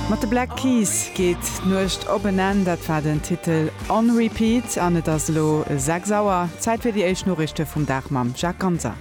Mat de Black Keys geet d'Nuecht op en Enn. Dat war den Titel On Repeat an et ass elo 6 Auer. Zäit fir déi éischt Noriichte vum Dag mam Jacques Ganser.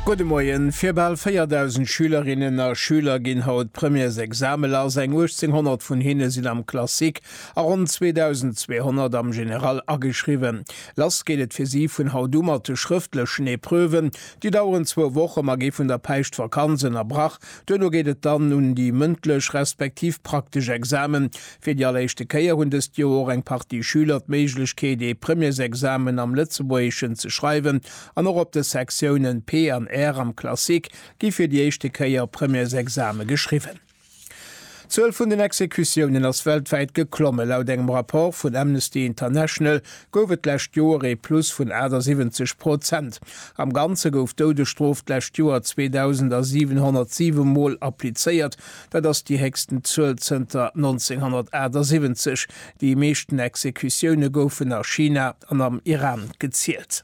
Gudde Moien. Fir bal 4.000 Schülerinnen a Schüler ginn haut d'Premièresexame lass. Eng 1.800 vun hinne sinn am Classique a ronn 2.200 am General ageschriwwen. Lass geet et fir si vun haut u mat de schrëftlechen Epreuven, Déi daueren zwou Woche, ma gi vun der Päischtvakanz ënnerbrach. Duerno geet et dann un déi mëndlech respektiv praktesch Examen. Fir déi alleréischte Kéier hunn dëst Joer och eng Partie Schüler d'Méiglechkeet ee Premiersexamen am Lëtzebuergeschen ze schreiwen an och op de Sektiounen P an R am Classique gi fir déi éischte Kéier Premiersexame geschriwwen. D'Zuel vun den Exekutiounen ass weltwäit geklommen. Laut engem Rapport vun Amnesty International gouf et d'lescht Joer ee Plus vun 78 Prozent. Am Ganze gouf d'Doudesstrof d'lescht Joer 2.707 Mol applizéiert. Dat ass déi héchsten Zuel zënter 1978. Déi meeschten Exekutioune goufen a China an am Iran gezielt.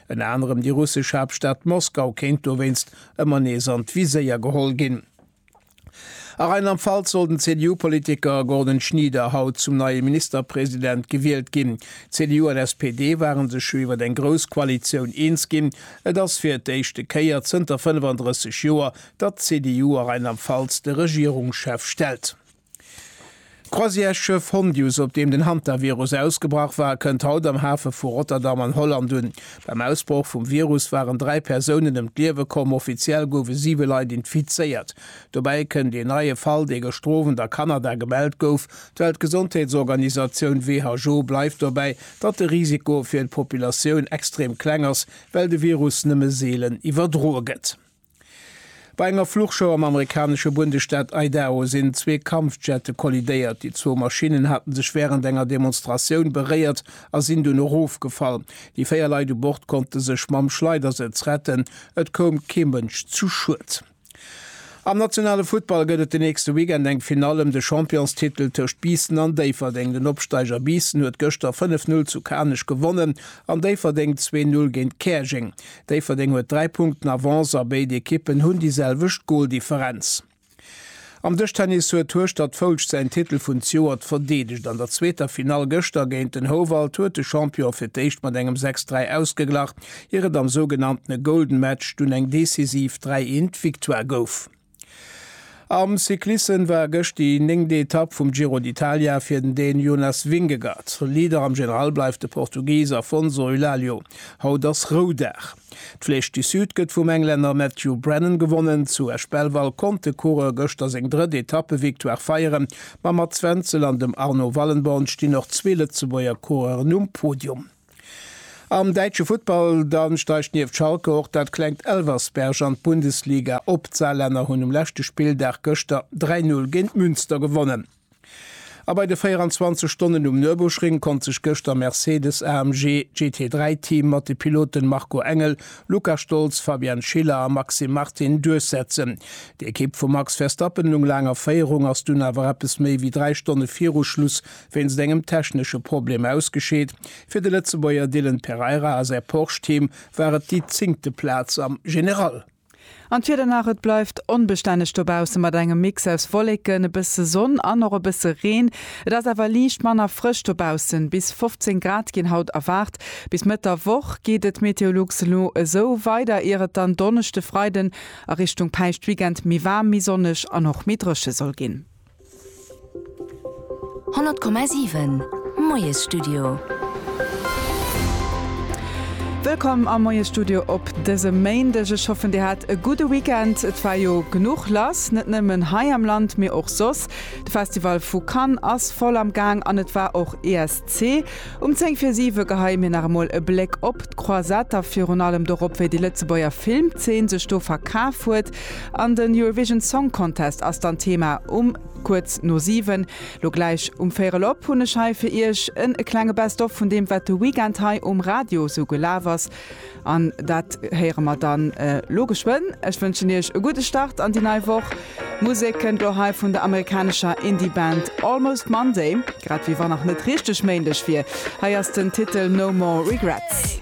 Ënner anerem déi russesch Haaptstad Moskau kéint dowéinst ëmmer nees an d'Viséier geholl ginn. A Rheinland-Pfalz soll den CDU-Politiker Gordon Schnieder haut zum neie Ministerpresident gewielt ginn. CDU an SPD ware sech jo iwwer eng grouss Koalitioun eens ginn. Et ass fir d'éischte Kéier zënter 35 Joer, datt d'CDU a Rheinland-Pfalz de Regierungschef stellt. D'Croisièresschëff Hondius, op deem den Hantavirus ausgebrach war, kënnt haut am Hafe vu Rotterdam an Holland un. Beim Ausbroch vum Virus waren dräi Persounen ëm d'Liewe komm, offiziell goufe siwe Leit infizéiert. Dobäi kënnt ee neie Fall, dee gëschter Owend a Kanada gemellt gouf. D'Weltgesondheetsorganisatioun WHO bleift dobäi, datt de Risiko fir d'Populatioun extrem kleng ass, well de Virus nëmme seelen iwwerdroe gëtt. Bei enger Fluchshow am amerikanesche Bundesstaat Idaho sinn zwee Kampfjette kollidéiert. Déi zwou Maschinnen hate sech wärend enger Demonstratioun beréiert a sinn dunn erofgefall. Déi véier Leit u Bord konnte sech mam Schleidersëtz retten. Et koum kee Mënsch zu Schued. Am nationale Futtball gëtt et den nächste Weekend eng Finall ëm de Championstitel tëscht Biissen an Déifferdeng. Den Opsteiger Biissen huet gëschter 5, 0 zu Kanech gewonnen an Déifferdeng zwee, 0 géint Käerjeng. Déifferdeng huet 3 Punkten Avance a béid Ekippen hunn déi selwecht Goldifferenz. Am Dëschtennis huet Hueschtert Foulscht säin Titel vun Zjoert verdeedegt. An der zweeter Finall gëschter géint den Houwald huet de Champion fir d'éischt mat engem 6, 3 ausgeglach, ier et am sougenanntene Golden Match dunn eng decisiv 3, 1 Victoire gouf. Am Cyclissem war gëscht déi néngte Etapp vum Giro d'Italia fir den Dän Jonas Vingegaard. Leader am General bleift de Portugis Afonso Eulálio. Haut ass Roudag. D'Flèche du Sud gëtt vum Englänner Matthew Brennan gewonnen. Zu Esch-Belval konnt de Coureur gëschter seng drëtt Etappevictoire feieren. Mam Mats Wenzel an dem Arno Wallenborn stinn och zwee Lëtzebuerger Coureuren um Podium. Am däitsche Futtball da steigt nieft Schalke och dat klengt Elversberg an d'Bundesliga op. D'Saarlänner hunn um leschte Spilldag gëschter 3 Null géint Münster gewonnen. A bei de 24 Stonnen um Nürburgring konnt sech gëschter Mercedes-AMG GT3 Team mat de Piloten Marco Engel, Luca Stolz, Fabian Schiller a Maxime Martin duerchsetzen. D'Ekipp vum Max Verstappen, eleng a Féierung, ass dunn awer eppes méi wéi 3 Stonne viru Schluss wéinst engem technesche Problem ausgescheet. Fir de Lëtzebuerger Dylan Pereira a säi Porsche-Team war et déi zéngte Plaz am General. An d'Wieder nach, et bleift onbestänneg dobausse mat engem Mix aus Wolleken, e bësse Sonn an och e bësse Reen. Et ass awer liicht manner frësch dobaussen, bis 15 Grad ginn haut erwaart. Bis Mëtt der Woch geet et Meteolux elo esou weider, ier et dann Donneschde, Freiden a Richtung Päischtweekend méi waarm, méi sonneg an och méi dréche soll ginn. 100,7 Moiesstudio. Wëllkomm am Moiesstudio op dësem Méindeg. Ech hoffen, Dir hat e gudde Weekend. Et war jo genuch lass, net nëmmen hei am Land, mee och soss. De Festival vu Cannes ass voll am Gaang an et war och ESC. Um 10 vir 7 geheie mir nach emol e Bléck op d'Croisette a virun allem dorop, wéi déi Lëtzebuerger Filmzeen sech do verkaf huet. An den Eurovision Song Contest ass dann Thema um kuerz no 7. Lo gläich um véierel op hunn ech hei fir iech en e klenge Best of vun deem wat de Weekend hei um Radio sou gelaf ass an dat héiere mer dann lo geschwënn. Ech wënschen iech e gudde Start an déi nei Woch. Musek kënnt lo hei vun der amerikanescher Indie Band Almost Monday, grad wéi wann nach net richteg Méindeg wier. Hei ass den Titel No More Regrets.